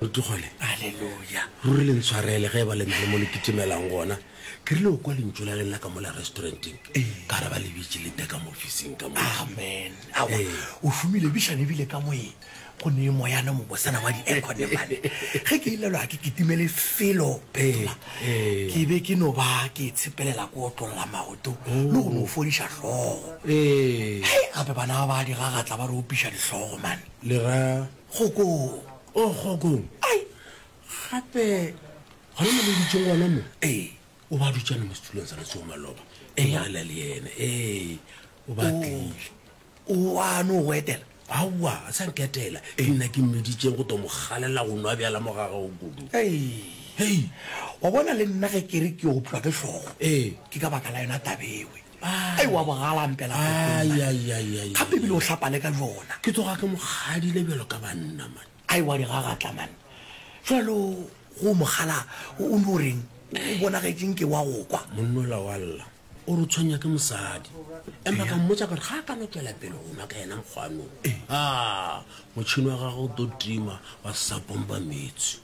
re tlogole aleluya ruri le ntshwarele ge e ba le na le mo le kitimelang gona ke rile o kwa lentšu la lenna ka mo la restauranteng ka re ba le bitše le teka mo ofising ka mo amen awa Ee. o šomile bišane ebile ka moye go ne moyana mobosana wa di-aircone mane ge ke ilelwa ga ke kitimele felo phetola Ee, ee. ke be ke no ba ke tshepelela ko otlolola maoto le go no fodiša hlogo ee gape bana ba ba di gagatla ba re opiša dihlogo mane Le ra, Kgokong! Oh, Kgokong! Ai! Gape gona mo le dutšeng gona mo? Ee, o ba dutšana mo setulong sa Letsogo Maloba. Ee, ya lela le yena. Ee, o ba tlile. O a no go etela? Aowa, a sa nketela. Ke nna ke mmeditšeng go to mo galela go nwa bjala mo gagago kudu. Ei! Hei! Wa bona le nna ge ke re ke oplwa ke hlogo. Ee. Ke ka baka la yona tabewe. ai wa bogala mpela ga pebile o hlapale ka jona ke tsoga ke mogadile bjalo ka banna man ai wa digagatla man jalo go mogala o no reng o bonagetseng ke wa go kwa monnola wa lla o re tshwenya ke mosadi empa ka mmotsa gore ga a ka no tswela pele go nwa ka yena nkgwanong a motšhini wa gago o to tima wa sa pompa metsi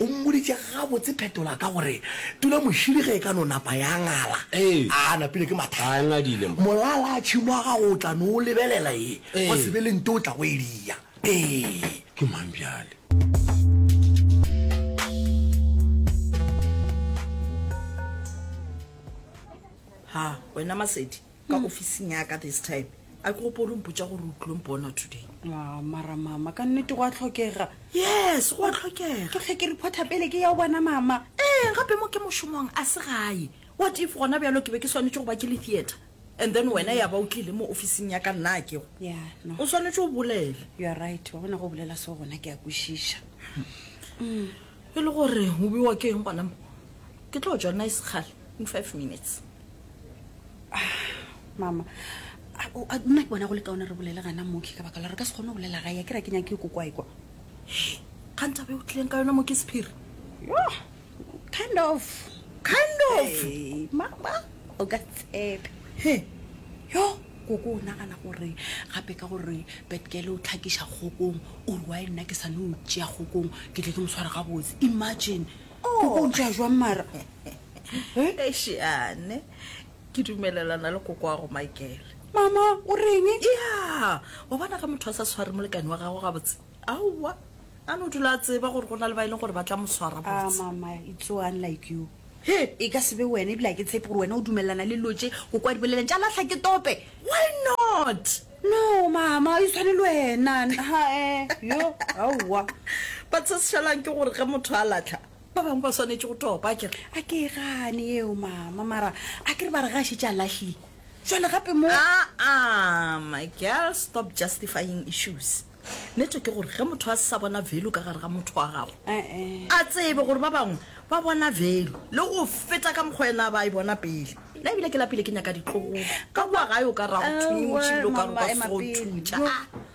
o mmoditše gabotse phetola ka gore tula mošidi ge e ka no napa ya ngala a napile ke mathata molala a tšhimo wa gago o tla no o lebelela e go se be le nto o tla go e dia ee ke mang bjale ha wena masedi ka ofising ya ka this time a ke gopo o re mpotsa gore o tlilong bona today Ah, mara mama ka nnete go a tlhokega yes go a tlhokega ke tlhe ke reporta pele ke ya o bona mama ee gape mo ke mošomong a se gae what if gona bjalo ke be ke swanetse go ba ke le theatre and then wena ya ba o tlile mo ofising ya ka nna a kego ya no o swanetse o bolele you are right wa bona go bolela se gona ke a kwešiša e le gore o bewa ke eng gona mo ke tlo tswa nna e sekgale in five minutes mama nna ke bona go le kaone re bolele gana moki ka baka la re ka se kgone go bolela ga ya ke ra ke nyake ko kwa ekwa kganta be o tlileng ka yona moki sephiri kind of kind of hey, mama o ka tshepe he yo koko o nagana gore gape ka gore betkele o tlhakiša kgokong o re wa e nna ke sane o tšea kgokong ke tle ke moswara gabotse imagine oh. koko o ntšea jwang mara ešeane ke dumelelana le koko wa go makele mama o reng ya wa bona ga motho a sa tshware molekane wa gago gabotse aowa a no dula a tseba gore go na le ba e leng gore ba tla mo swara ah, botse mama it's so unlike you he e ka sebe wena ebile a ke tshepe gore wena o dumelelana le lotse go kwa diboleleng tša latlha ke tope why not no mama e tshwane le wena hae eh, yo aowa ba tshesešelang ke gore ge motho a latlha Ba bangwe ba swanetše go topa, a ke re. A ke e gane yeo, Mama, mara a ke re ba re ge a šetše a lahlile, bjale gape mo. A-a, my girl, stop justifying issues. Nete ke gore ge motho a se sa bona value ka gare ga motho wa gagwe, a tsebe gore ba bangwe ba bona value le go feta ka mokgwa yena a ba a e bona pele. Nna ebile ke lapile, ke nyaka ditlogolo ka kua gae, o ka re a go thutše ebile o ka re o ka se tsoge o thutša.